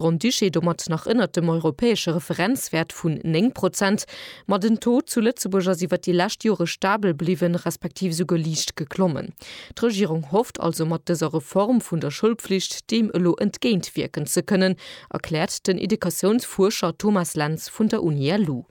Grand-Duché domat nach ënnert dem europäesche Referenzwäert vun 9 Prozent. Ma den Taux zu Lëtzebuerg ass iwwer déi lescht Jore stabel bliwwen, respektiv esouguer liicht geklommen. D'Regierung hofft also mat dëser Reform vun der Schoulpflicht deem elo entgéintwierken ze kënnen, erkläert den Educatiounsfuerscher Thomas Lentz vun der Uni LU.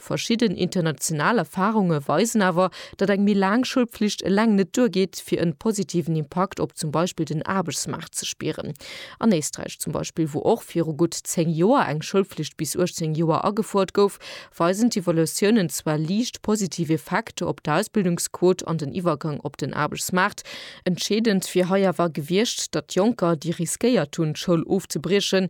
Verschidden international Erfahrunge weisen awer, datt eng méi laang Schoulpflicht eleng net duergeet, fir en positiven Impakt op zum Beispill den Aarbechtsmaart ze spieren. An Éisträich zum Beispill, wou och viru gutt 10 Joer eng Schoulpflicht bis 18 Joer agefuert gouf, weisen d'Evaluatiounen zwar liicht positiv Effekter op d'Ausbildungsquot an den Iwwergang op den Aarbechtsmaart. Entscheedend wier hei awer gewiescht, datt Jonker, déi riskéiert hunn, d'Schoul ofzebriechen,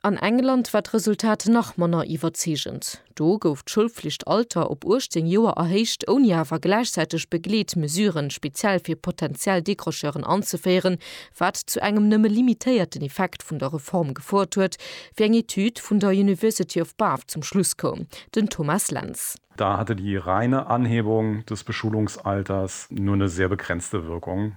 An England war d'Resultat nach manner iwwerzeegend. Do gouf d'Schoulflichtalter op 18 Joer erhéicht, ouni awer gläichzäiteg Begleetmesuren speziell fir potentiell Décrocheuren anzeféieren, wat zu engem nëmme limitéierten Effekt vun der Reform gefouert huet, wéi eng Etüd vun der University of Bath zum Schluss koum. Den Thomas Lentz. Da hatte die reine Anhebung des Beschulungsalters nur eine sehr begrenzte Wirkung.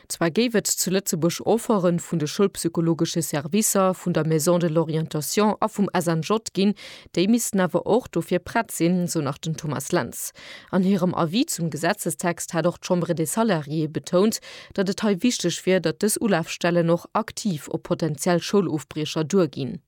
Zwar géif et zu Lëtzebuerg Offerten vun de schoulpsychologesche Servicer, vun der Maison de l'Orientation a vum SNJ ginn, déi missten awer och dofir prett sinn, sou nach den Thomas Lentz. An hirem Avis zum Gesetzestext hat och d'Chambre des Salariés betount, datt et hei wichteg wier, datt dës Ulafstellen och aktiv op potenziell Schoulofbriecher duerginn.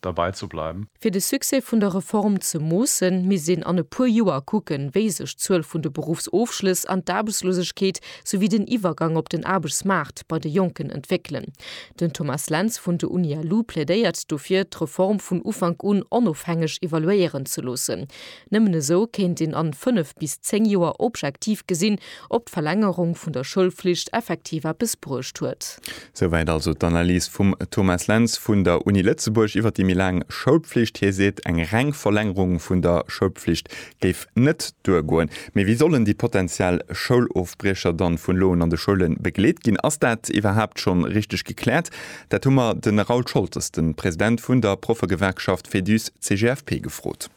derbei ze bleiwen. Fir de Succès vun der Reform ze moossen, misst een an e puer Joer kucken, wéi sech d'Zuel vun de Beruffsofschlëss an d'Aarbechtslosegkeet souwéi den Iwwergang op den Aarbechtsmaart bei de Jonken entwéckelen. Den Thomas Lentz vun de Unia-Lu plädéiert dofir, d'Reform vun Ufank un onofhängeg evaluéieren ze loossen. Nëmmen esou kéint een an 5 bis 10 Joer objektiv gesinn, ob d'Verlängerung vun der Schoulflicht effektiv eppes bruecht huet. Souwäit also d'Analys vum Thomas Lentz vun der Uni Lëtzebuerg iwwer déi méi laang Schoulpflicht. Hie seet, eng reng Verlängerung vun der Schoulpflicht géif net duergoen. Mee wéi sollen déi potentiell Schoulofbriecher dann vun elo un an de Schoule begleet ginn? Ass dat iwwerhaapt schonn richteg gekläert? Dat hu mer de Raoul Scholtes, de President vun der Proffegewerkschaft FEDUS-CGFP, gefrot.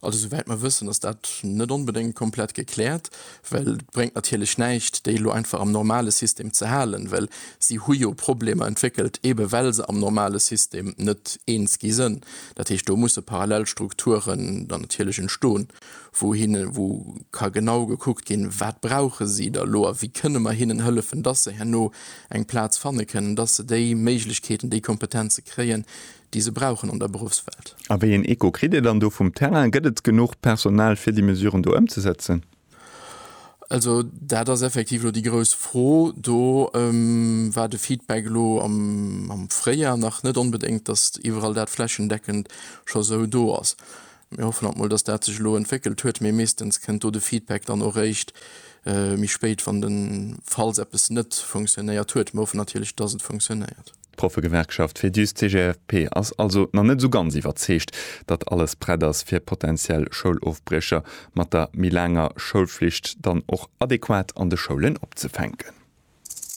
Also souwäit mer wëssen, ass dat net onbedéngt komplett gekläert, well et bréngt natierlech näischt, déi elo einfach am normale System ze halen, well si hu jo Problemer entwéckelt, eebe well se am normale System net eens gi sinn. Dat heescht, do musse parallel Strukturen dann natierlech entstoen, wou hinne wou ka genau gekuckt ginn, wat brauche si da elo a wéi kënne mer hinnen hëllefen, dass se herno eng Plaz fanne kënnen, dass se déi Méiglechkeeten, déi Kompetenze kréien, déi se brauchen an der Beruffswelt. A wéi een Echo kritt Dir dann do vum Terrain? Gëtt et genuch Personal fir déi Mesuren do ëmzesetzen? Also dat ass effektiv elo déi grouss Fro. Do war de Feedback elo am Fréijar nach net onbedéngt, datt iwwerall dat flächendeckend scho sou do ass. Mir hoffen alt mol, datt dat sech elo entwéckelt huet, mee meeschtens kënnt do de Feedback dann och réischt méi spéit, wann de falls eppes net funktionéiert huet. Mir hoffen natierlech, datt et funktionéiert. D'Proffegewerkschaft Fedus CGFP ass also nach net esou ganz iwwerzeegt, datt alles prett ass fir potentiell Schoulofbriecher mat der méi laanger Schoulflicht dann och adequat an de Schoulen opzefänken.